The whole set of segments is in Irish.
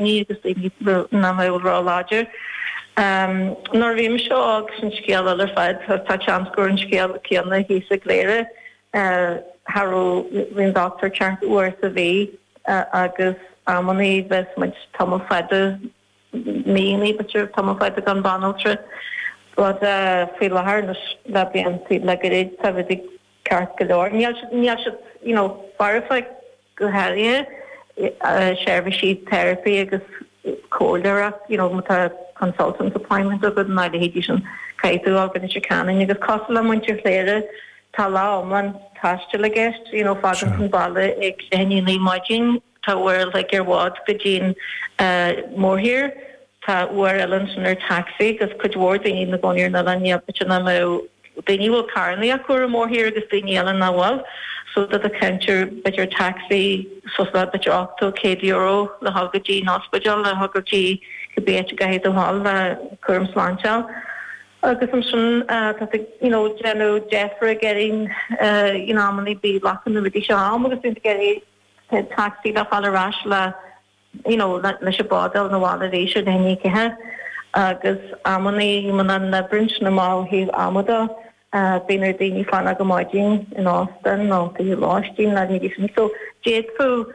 Ní agus í ina banaltra láidir. Nuair a bhí mise óg sin scéal eile ar fad, tá seans go raibh an scéal céanna thíos i gCléire, cha raibh aon dochtúir ceart uair sa mhí agus amannaí bheas muid tamall fada, míonnaí b'fhéidir tamall fada gan banaltra. Ach faoi láthair, anois le blianta, le gairid, tá rudaí. Ceart go leor, níl siad, níl siad, you know, foirfe go háirithe seirbhísí teiripe agus comhairleoireacht, you know, má tá consultant appointment agat ná a leithéidí sin, caithfidh tú dul go Leitir Ceanainn. Agus cosúil le muintir Chléire, tá lá iomlán taistil i gceist, you know, fágann tú an baile ag leath i ndiaidh a naoi ar maidin, Tá uair a chloig ar bhád go dtí'n mórthír. Tá uair eile ansin ar taxi agus cuid mhór daoine ina gcónaí ar an oileán. Níl muid in ann leo, daoine a bhfuil carrannaí acu ar an mórthír agus daoine eile nach bhfuil. So tá tú ag caint ar b'fhéidir taxi suas le b'fhéidir ochtó, céad euro le dhul go dtí'n ospidéal, le dhul go dtí cibé áit a gcaithfidh tú dhul le cúram sláinte a fháil. Agus ansin tá tú you know déanamh deifir ag Eirín you know amannaí bíonn glacann na rudaí seo am agus bíonn tú ag iarraidh Tacsaí le fáil ar ais le you know leis an bád a fháil na bhaile arís ar leath i ndiaidh a ceathair agus amannaí muna n-oibríonn amach ó thaobh ama de bíonn ar daoine fanacht go maidín in óstan nó fiú lóistín ná a leithéidí sin so d'fhéadfadh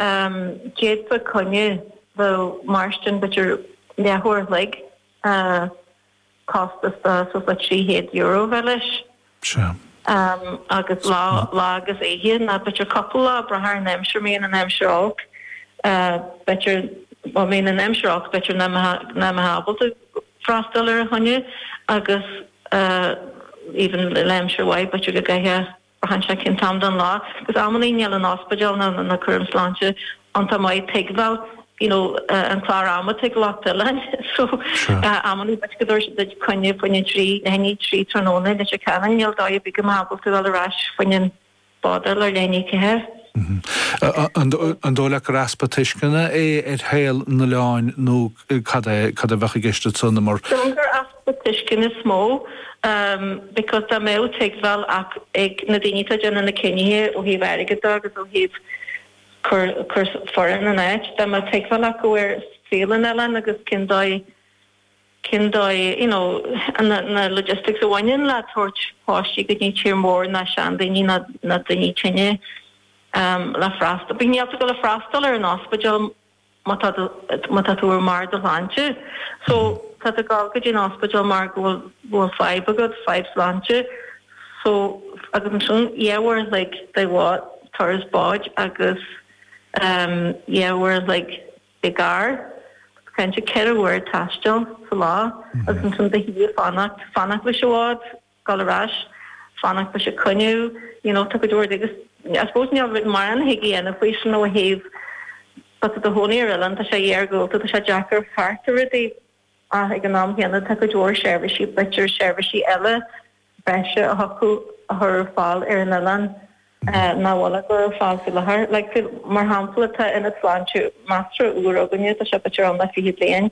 ehm d'fhéadfadh coinne a bheadh ag mairstin b'fhéidir leathuair a chloig eh costas de suas le €300 a bheith leis. Sea. Agus lá lá agus oíche ná b'fhéidir cúpla lá ag brath ar an aimsir, má bhíonn an aimsir olc, b'fhéidir, bhuel má bhíonn an aimsir olc b'fhéidir nach mbeifeá ábalta freastal ar an choinne agus even le aimsir mhaith b'fhéidir go gcaithfeá. Braitheann sé cén t-am den lá, agus amannaí níl an ospidéal ná na cúraim sláinte iontach maith ag tuigbheáil, you know, an clár ama atá ag lucht oileáin, so amannaí b'fhéidir go dtabharfaidh siad duit coinne fá choinne a trí, leath i ndiaidh a trí tráthnóna agus you know níl dóigh ar bith go mbeadh tú ar ais fá choinne bád ar leath i ndiaidh a ceathair. An dóigh leat gur easpa tuisceana é ar shaol an oileáin nó cad é, cad a bheadh i gceist agatsa na mar? Déarfainn gur easpa. tuiscint is mó because dá mbeadh tuigbheáil ag na daoine atá ag déanamh na cinnithe ó thaobh airgead de agus ó thaobh cur foireann in áit, dá mbeadh tuigbheáil acu ar saol an oileáin agus cén dóigh, cén dóigh, you know, na logistics a bhaineann le tabhairt páistí go dtí tír mór ná seandaoine ná daoine tinne le freastal, bheith ábalta dhul le freastal ar an ospidéal. má tá tú ar mbarr do shláinte so tá tú ag dul go dtí an ospidéal mar go bhfuil bhfuil fadhb agat, fadhb sláinte so agus ansin dhá uair like ar bhád turas báid agus ehm dhá uair like i gcarr kind of ceithre uair taistil sa lá agus ansin do shuí ag fanacht fanacht leis an bhád. dul ar ais, fanacht leis an choinne, you know, tá go leor de agus I suppose níl mórán a thig a dhéanamh faoi sin ó thaobh tá tú i do chónaí ar oileán, tá sé iargúlta, tá sé deacair fáil thart ar rudaí ach ag an am chéanna tá go leor seirbhísí, b'fhéidir seirbhísí eile breise a thiocfadh a chur ar fáil ar an oileán nach bhfuil á gcur ar fáil faoi láthair. Like mar shampla tá ionad sláinte measartha úr againne, tá sé b'fhéidir ann le fiche bliain,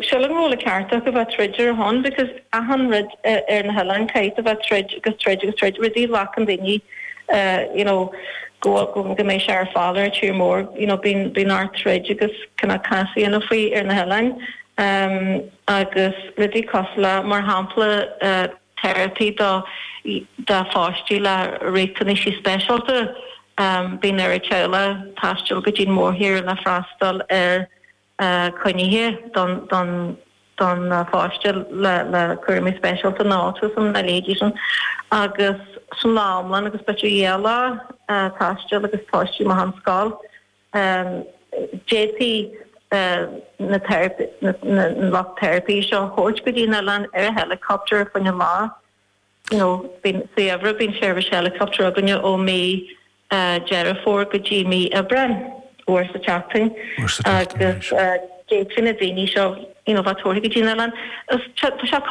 Sílim go bhfuil an ceart acu bheith ag troid ar a shon because achan rud ar na hoileáin caithfidh a bheith ag troid agus troid agus troid rudaí a ghlacann daoine you know go bhfuil go mbeidh sé ar fáil ar an tír mór you know bíonn bíonn ort troid agus cineál cás a dhéanamh faoi ar na hoileáin ehm agus rudaí cosúil le mar shampla therapy do do pháistí le riachtanaisí speisialta ehm bíonn ar an teaghlach taisteal go dtí an mórthír le freastal ar a coinnithe don pháiste le cúraimí speisialta nó autism, a leithéidí sin, agus sin lá iomlán agus b'fhéidir dhá lá taistil agus páiste amach ón scoil, d'fhéadfaí na lucht teiripí seo a thabhairt go dtí an oileán ar heileacaptar faoi choinne lá. nó bíonn sa gheimhreadh, bíonn seirbhís helicopter againne ó mí Deireadh Fómhair go dtí mí Aibreáin, uair sa tseachtain, agus d'fhéadfaí na daoine seo, you know, bheith tabhartha go dtí an oileán. Tá sé costasach.